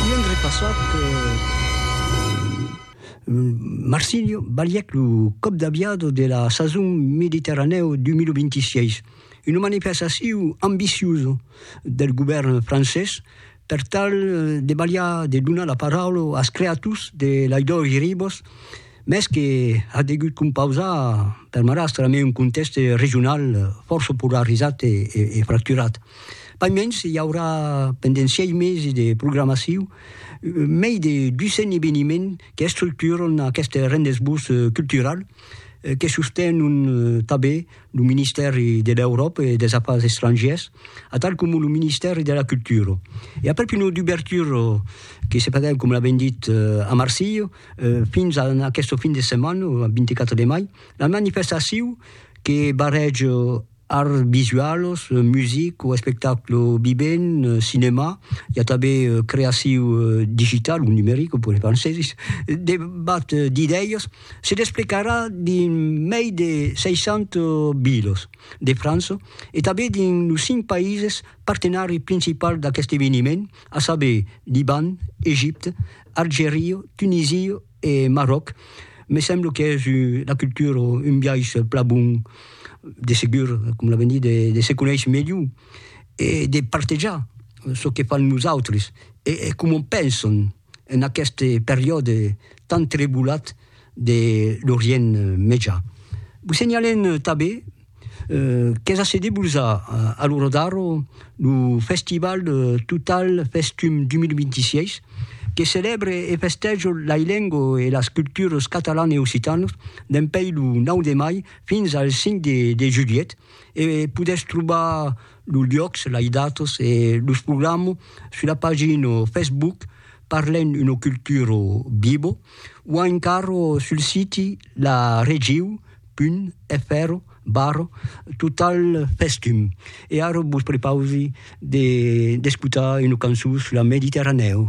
Divendre passat, Marsilio balhèc lo còp d'aviador de la sason Mediterranèo 2026, una manifestacion ambiciosa del govèrn francés per tal de balhar de donar la paraula als creators de las dois ribas, mès que a degut compausar per marrastre amé un contèxte regional fòrça polarizat e fracturat. Pas mens, i aurà pendent sièis mesi de programacion mei de 200 eveniments qu'estructuran aqueste rendez-vous cultural que sostenon tanben lo Ministèri de l'Euròpa e dels Afars Estrangièrs atal coma lo Ministèri de la Cultura. E aprèp una dubertura que se faguèt, coma l'avèm dit, a Marsilha fins a aquesta fin de setmana, lo 24 de mai, la manifestacion que barrèja Arts visualos, music o espectaclo vivent, cinemà, i a tanben creaciu digital o numeric, pus en francesis, debat d'idèias se desplecarà dins mei de 60 vilas de França e tanben dins los cinc païses partenari principals d'aqueste eveniment, a saber, Liban, Egipte, Algeria, Tunisia E Marròc, me semblo qu'es una cultura, un biais plan bon, de segur, com la venir de se conéisher melhor e de partejar çò que fan los autres e coma pensan en aqueste periòde tan trebulat de l'Orient Mejan. Vos senhalem tanben, Qu'es a se debusar a lo Rodaro lo festival Total Festum 2026, que celèbre e festèja lai lengo e las culturas catalan e occitanas dempèi lo 9 de mai fins al 5 de julhet e podètz trobar los luòcs, lai datas e los programa sus la pagina Facebook Parlem una cultura viva o encara sul siti la regiu. pun, fèrro, barro, total festum. E ara vos prepausi de d'escotar una cançon sus la Mediterranèu.